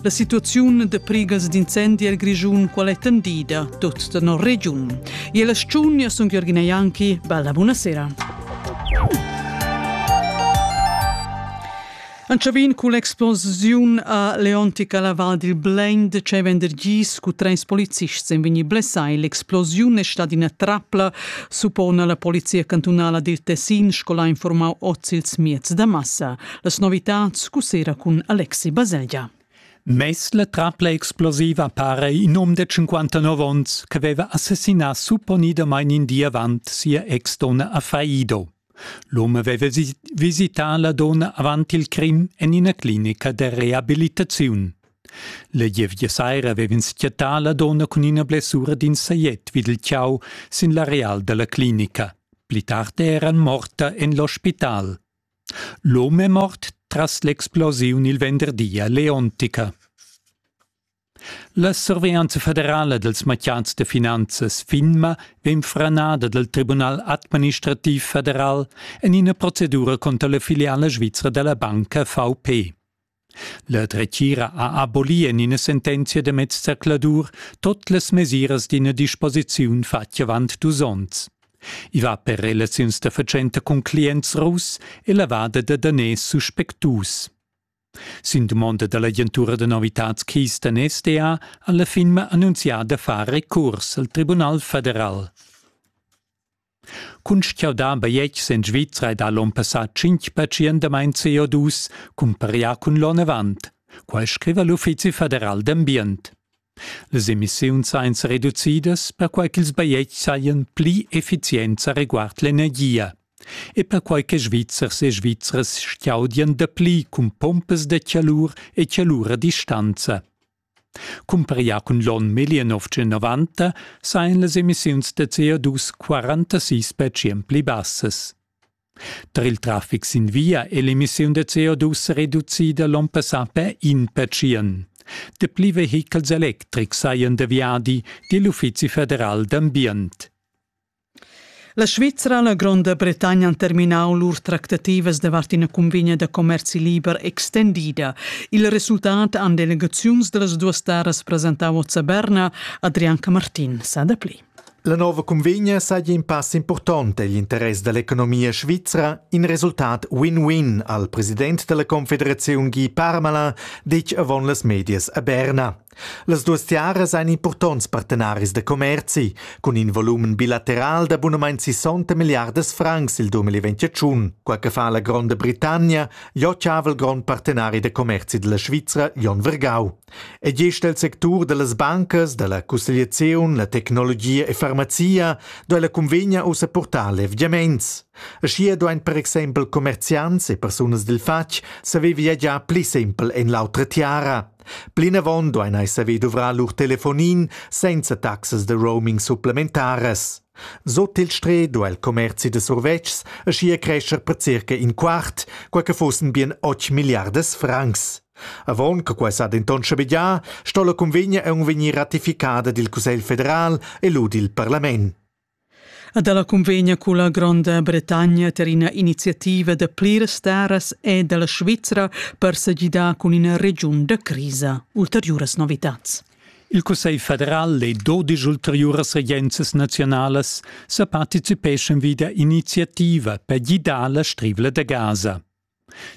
La situaziun de prigas d'incendi el Grischun qual è tendida tot da no regiun. E la sciugna sun Jürgen Janki, bella buonasera. Anchavin cu l'explosiun a Leontica la Val dil Blend c'è vendergis cu treis polizists en vegni blessai. L'explosiun è stata ina trapla, suppona la polizia cantunala dil Tessin scola informau oz ils miez da massa. Las novitads cussera cun Alexi Baselgia. Mes la trapla explosiva pare in um de 59 onns che aveva assassinà supponidamain in di avant sia ex-donna a Faido. L'uomo aveva visità la donna avant il crim en ina clinica de reabilitaziun. La gievgia saira avevano schiattà la donna con una blessura d'in saiet vid il ciao sin l'areal della clinica. Pli tardi eran morta en l'ospital. L'hom è mort tras l'explosiun il venderdi a Leontica. La surveglianza federala dals matgiats da finanzas FINMA vegn franada dal Tribunal administrativ federal en ina procedura contra la filiala svizra da la banca VP. La dretgira ha abolì en ina sentenzia da mezzercladur tot las mesiras d'ina disposiziun fatg avant dus onns. I va per relaziuns da fatschenta cun clients russ e lavada da daners suspectus. Sin dumonda da l'agentura da novitads Keystone SDA ha la firma annunzià da far recurs al Tribunal federal. Cun sch'jau da bajetg sen Svizra e da l'on passà tschintg pazientamain CO2 cumparià cun l'on avant. Quai scriva l'Uffizi federal d'ambient. Les emissiuns sain reducidas perquai ch'ils bajetgs sajan pli effizients a reguard l'energia e perquai che Svizzers e Svizras schiaudian dapli cun pompas da chalur e chalura distanza. Cumparià cun l'onn 1990 sajan las emissiuns da CO2 46 percent pli bassas. Tar il traffic sin via è l'emissiun da CO2 sa reducida l'onn passà per in percent. Dapli vehichels electrics sajan da viadi, di l'Uffizi federal d'ambient. La Svizra e la Gronda Bretagna han terminau lur tractativas davart ina cunvegna da commerci liber extendida. Il resultat han delegaziuns dallas duas taras presentau a Berna. Adrian Camartin sa dapli. La nova cunvegna saja in pass important egl interess dall'economia svizra, in resultat win-win al president dalla Confederaziun Guy Parmala, detg avon las medias a Berna. Las duas tiaras ein impurtonts partenaris da commerzi cun in volumen bilateral da bunamein 60 milliardas francs il 2021, quei che fa la Gronda Britannia ja chaval grond partenari da commerzi dalla Svizra Jon Vergau. E gest el sectur dallas bancas, dalla cussegliazion, la tecnologia e farmazia do la convegna ussa portar levgiaments. Aschia duein per exempel commerziants e persunas dil fatg saver viagiar pli sempel en l'autra tiara. Plinavon duein ei saver duvrar lur telefonin senza taxas da roaming supplementaras. Sut il Stre do el commerzi de survetschs aschia crescher per circa in quart, quei che fussen bien otg milliardas francs. Avon che quei sa denton schabegiar, sto la convegna aunc vegnir ratificada dil Cussegl federal e lu dil parlament. Ed ella cunvegna culla Gronda Bretagna ter ina iniziativa da pliras staras e dalla Svizra per segidar cun ina regiun da crisa. Ulteriuras novitats. Il Cussegl federal e dodisch ulteriuras regenzas naziunalas sa participeschan vida iniziativa per gidar la strivla da Gaza.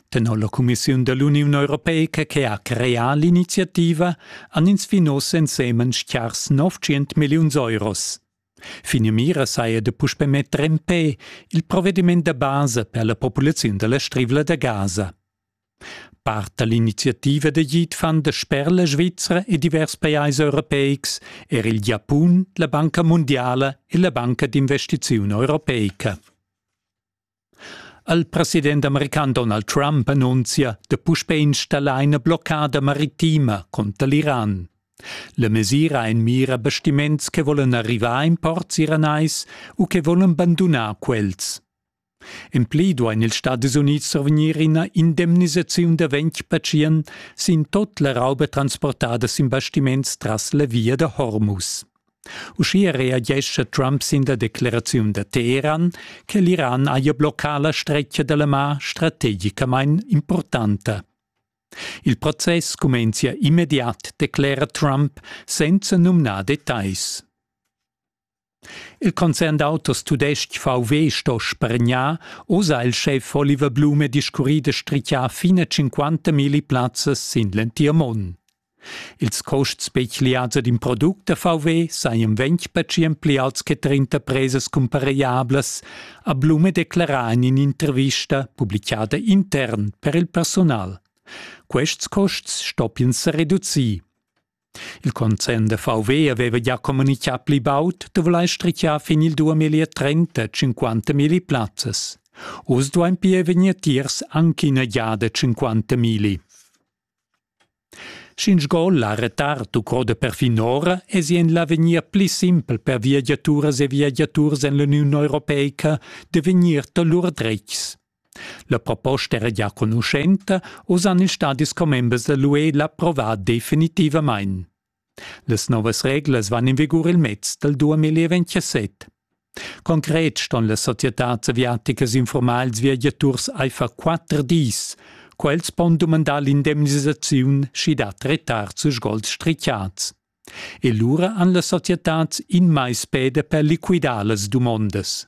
Tenor la Commissiun dell'Uniun Europeica che ha creà l'iniziativa han ins fin oz ensemen stgars 900 milliuns euros. Finamira saja da puspè metter en pe il provediment da basa per la populaziun da la Strivla da Gaza. Part da l'iniziativa da git fan da sper la Svizra e divers pajais europeics er il Giapun, la Banca mundiala e la Banca d'investiziun europeica. Il president american Donald Trump annunzia da puspè installar ina bloccada maritima cunter l'Iran. La mesira en mira bastiments che volan arrivar in ports iranais u che volan bandunar quels. En pli duain ils Stadis Unids survegnir ina indemnisaziun da ventg pazient sin tut la rauba transportada sin bastiments tras la via da Hormuz. Uschia reagescha Trump sin la decleraziun da Teheran che l'Iran haja bloccà la stretga da la mar strategicamain importanta. Il process cumenzia immediat, declera Trump senza numnar details. Il concern d'autos tudestg VW sto spargnar, osa il chef Oliver Blume discurri da strichar fine 50.000 plazzas sin l'entir mund. Ils cuosts pegliads ed in product da VW sajan ventg pertschient pli auts che trenta presas cumparegliablas, ha Blume declerà en in'intervista publichada intern per il personal. Quests custs stoppian sa reducir. Il concern da VW aveva già communitgà pli baud da vulair strichar fin il 2030 50 milli plazzas. Oz duain pia vegnir tiers anche ina giada 50 milli. Sch'ingiol ha retard u croda perfin ora, esi en l'avegnir pli simpel per viagiaturas e viagiaturs en l'Uniun europeica da vegnir da lur dretgs. La proposta era gia conuschenta, oz han ils stadis commembers da l'UE l'approvat definitivamain. Las novas reglas van in vigur il mez dal duamiliev entschaset. Concret ston las societads aviaticas informar ils viagiaturs aifer quatter dis. Quels pon dumandar l'indemnisaziun, sch'i dat retards u sgols strichats. E lura han las societads in mais peda per liquidar las dumondas.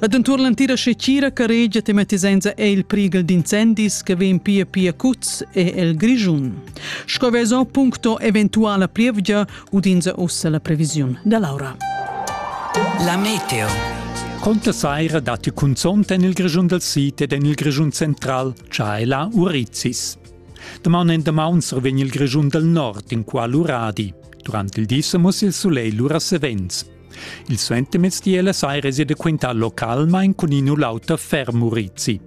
Ed entuorn l'entira scecira caregia tematisenza è il prighel d'incendis che vegn pia pia cuts è el Grischun. Sco veso puncto eventuala plievgia udinza ussa la previsiun da Laura. La meteo. Conta saira datti cunzont en il Grischun del Sid ed en il Grischun central Chaila Urizis. Daman en damaunser vegn il Grischun del Nord in qua l'uradi. Durant il di sa muss il sulegl lura savens. Il suentermezdi ella saira sia da quintar localmain cun in u l'auter ferm urizi.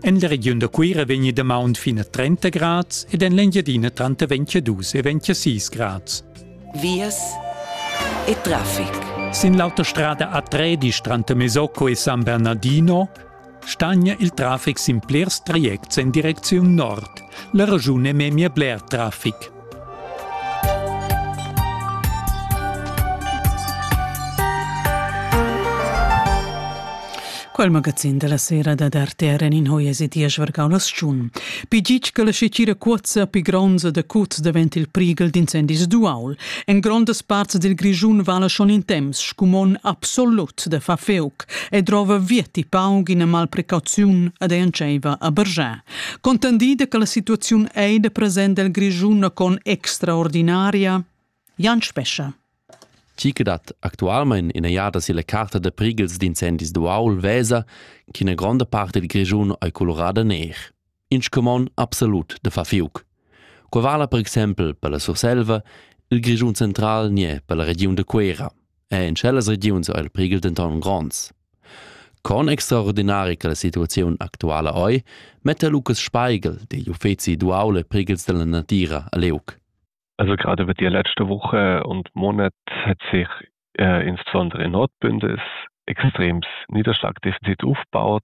En la regiun da Cuira vegni damaun fin a 30 grads ed en l'Engiadina tranter 22 e 26 grads. Vias e traffic. Sin l'autostrada a Tredisch tranter Mesocco e San Bernardino stagna il traffic sin blers trajects en direcziun nord. La regiun è memia bler traffic. Quel magazin da la sera da d'RTR en in hoies e dies vargau la schun. Pigic che la scecira cuozza pi gronza da cuz davent il prigel d'incendis duaul. En grondas parts del Grischun vala schon in temps scumon absolut de fa feuc. e drova vieti paug ina malprecauziun ed ei entscheiva a bergiar. Contendida che la situaziun ei da present del Grischun con extraordinaria, Jan Spescha. Chi che dat actualmein ina jada silla carta da prighels d'incendis d'uaul vesa ch'ina gronda parte dil Grischun ei colorada ner. in scumond absolut da far fiuc. Qua vala per exempel per la Surselva il Grischun central nie per la regiun de Quera, e in cellas regiuns ha il prigel denton gronds. Con extraordinari che la situazione actuala oi metta Lucas Speigel degli Uffezi duale prigels della natira a Leuc. Also gerade wird die letzte Woche und Monat hat sich äh, insbesondere in Nordbünden ist extrem Niederschlagdefizit aufgebaut.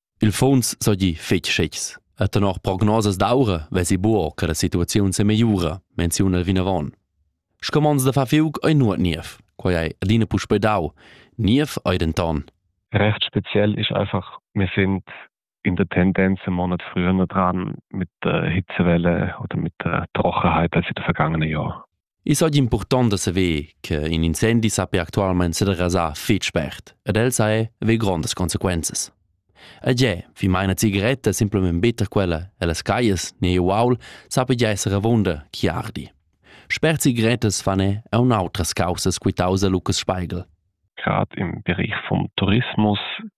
Il funs seigi fetg schecks. E tenor prognosas d'aura vesi buca che la situaziun semegliura, menziuna el vinavon. Scumons da far fiug ei nuot niev. Quei ei adina puspei dau. Niev ei denton. Recht speziell ist einfach, wir sind in der Tendenz einen Monat früher dran mit der Hitzewelle oder mit der Trockenheit als in den vergangenen Jahren. I so impurtant da saver che in incendi sappi actualmente serasar fitg spert ed el sa è ve grondas consequenzas. E giè, vi mai una cigaretta simplement bitter quella e las caias ne uaul sappi già essere avunda chi ardi. Spert cigarettas fan è un outras causas quitausa Lucas Speigel. Gerade im Bereich vom Tourismus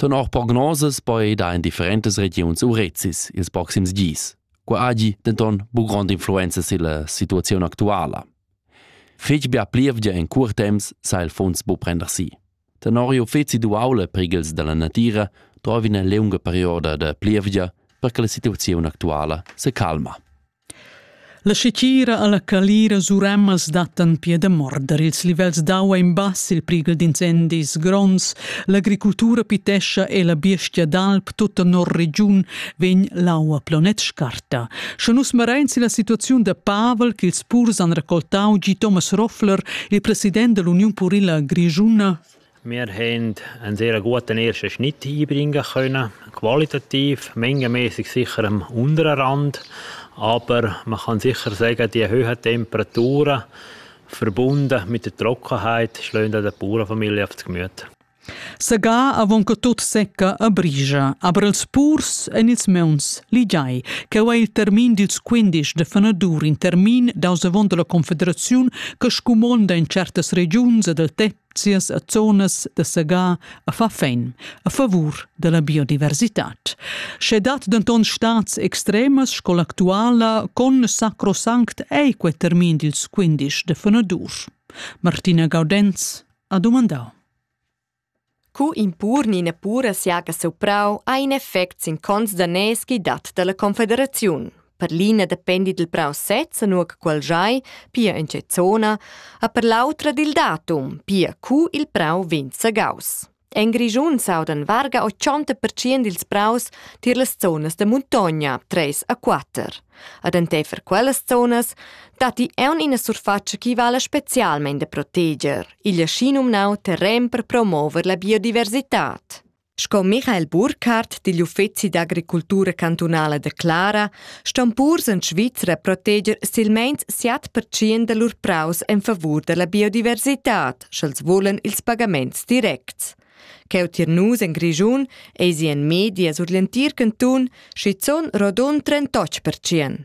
Tenor prognosas poida en differentas regiuns urezis ils proxims dis. Qua hagi denton bu grond'influenza silla situaziun actuala. Fetg bia plievgia en cur temps sa il funs bu prender si. Tenor uffeci duaula prigels dalla natira trovi ina lunga perioda da plievgia per che la situaziun actuala se calma. La scetira alla calira surammas dattan pia da morder ils livels d'aua in bass il prighel d'incendis gronds. L'agricultura pitescha e la biestia d'alp tutta nor regiun vegn l'aua planet scarta. Sche nus marain sin la situaziun da Pavel ch'ils purs han raccoltau gi Thomas Roffler, il president dell'Union Purila Grigiuna, Wir haben einen sehr guten ersten Schnitt einbringen können, qualitativ mengenmäßig sicher am unteren Rand, aber man kann sicher sagen, die hohen Temperaturen verbunden mit der Trockenheit schlagen der Bauernfamilie auf das Gemüt. Segà avon che tut secca a brigia, aber els purs en ils meuns ligiai, che è il termin dils 15 de fenadur in termin daus avon dalla Confederaziun che scumonda in certas regiuns del tetto sias zonas da segar a fa fein a favur dalla biodiversitad. Sche dat denton stats extremas sco l'actuala con sacrosanct ei quei termin dils 15 de fenadur. Martina Gaudenz ha domandau. Cu impur ni nepura siaga seu prau ha in effect sin cons da neschi dat dalla confederaziun. Per l'ina dependi dil prau sez, nua che quel giai, pia en tge zona, a per l'autra dil datum, pia cu il prau vegn segaus. En Grischun s'audan varga 80% dils praus tier las zonas da muntogna, 3 a 4. Ad enteifer quellas zonas datti aun ina surfatscha che vala specialmein da proteger, igl aschi numnau terren per promover la biodiversitad. Sco Michael Burkhardt digl Uffezi d'agricultura cantunala declara, ston purs en Svizra proteger silmeins 7% da lur praus en favur dalla biodiversitad, sch'els vulan ils pagaments directs. Cheu tier nus en Grischun eisi en medias ur l'entir cantun schizun rodund 38%.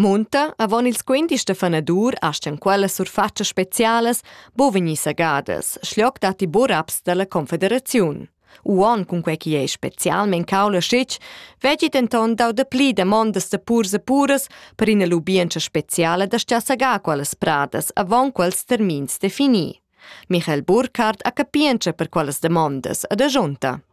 Munta, avon ils quindisch da fanadur astgan quellas surfatschas specialas bu vegnir sagadas, schloc datti buraps dalla confederaziun. Uon cun quei chi ei specialmein caula schitg, veggi denton dau dapli demondas da purs e puras per ina lubientscha speciala da sta sagar quellas pradas avon quels termins defini. Michael Burkhardt ha capientscha per quellas demondas ad agiunta.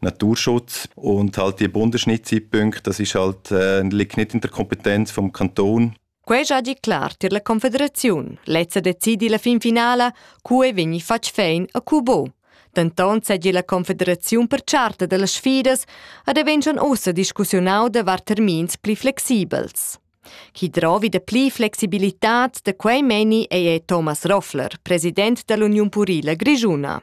Naturschutz und halt die Bundesschnittzeitpunkte, das ist halt, äh, liegt nicht in der Kompetenz vom Kanton. Quei già di clar tier la Confederaziun. Lezza decidi la fin finala, cu ei vegni fatg fein a cu bo. Denton segi la Confederaziun per charta dellas sfidas ad evenschan ussa discussiunau davart termins pli flexibels. Chi drovi de pli flexibilitad de quei meni ei Thomas Roffler, president dell'Union Purila Grigiuna.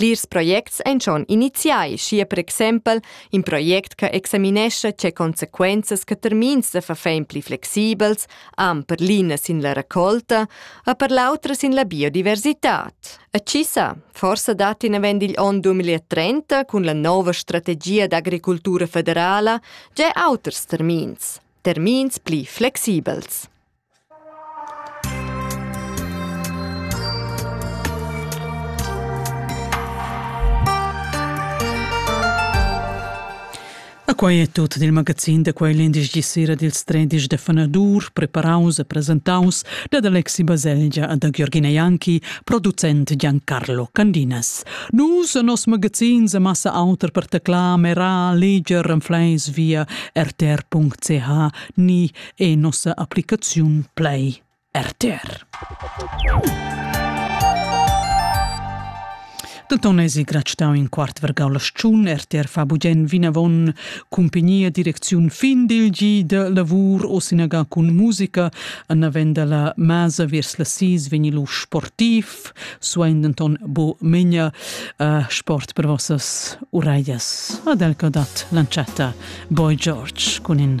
Plirs projects ein schon iniziai, schi per exempel in project che examinescha tge consequenzas che termins da verfein pli flexibels han per l'ina sin la raccolta e per l'autra sin la biodiversitad. E ci sa, forse dat in avant igl onn 2030 cun la nova strategia d'agricultura federala già auters termins, termins pli flexibels. Quei è tutto dil magazin da quei l'indici sera dils tredici da fanadur, preparaus e presentaus dad Alexi Baselgia e da Giorgina Janki, producent Giancarlo Candinas. Nus e nos magazin se massa auter per teclar, mera, leger, renfleis via rtr.ch ni e nossa applicaziun Play RTR. Denton esi grad stau in quart vergau la schun, RTR fa bugen vinavon cumpagnia direcziun fin dil gi de lavur o sinaga cun musica, annaven dalla masa viers la sis vegni lu sportiv, suein denton bo megna uh, sport per vossas uraias. Ad el dat l'anchetta Boy George cun in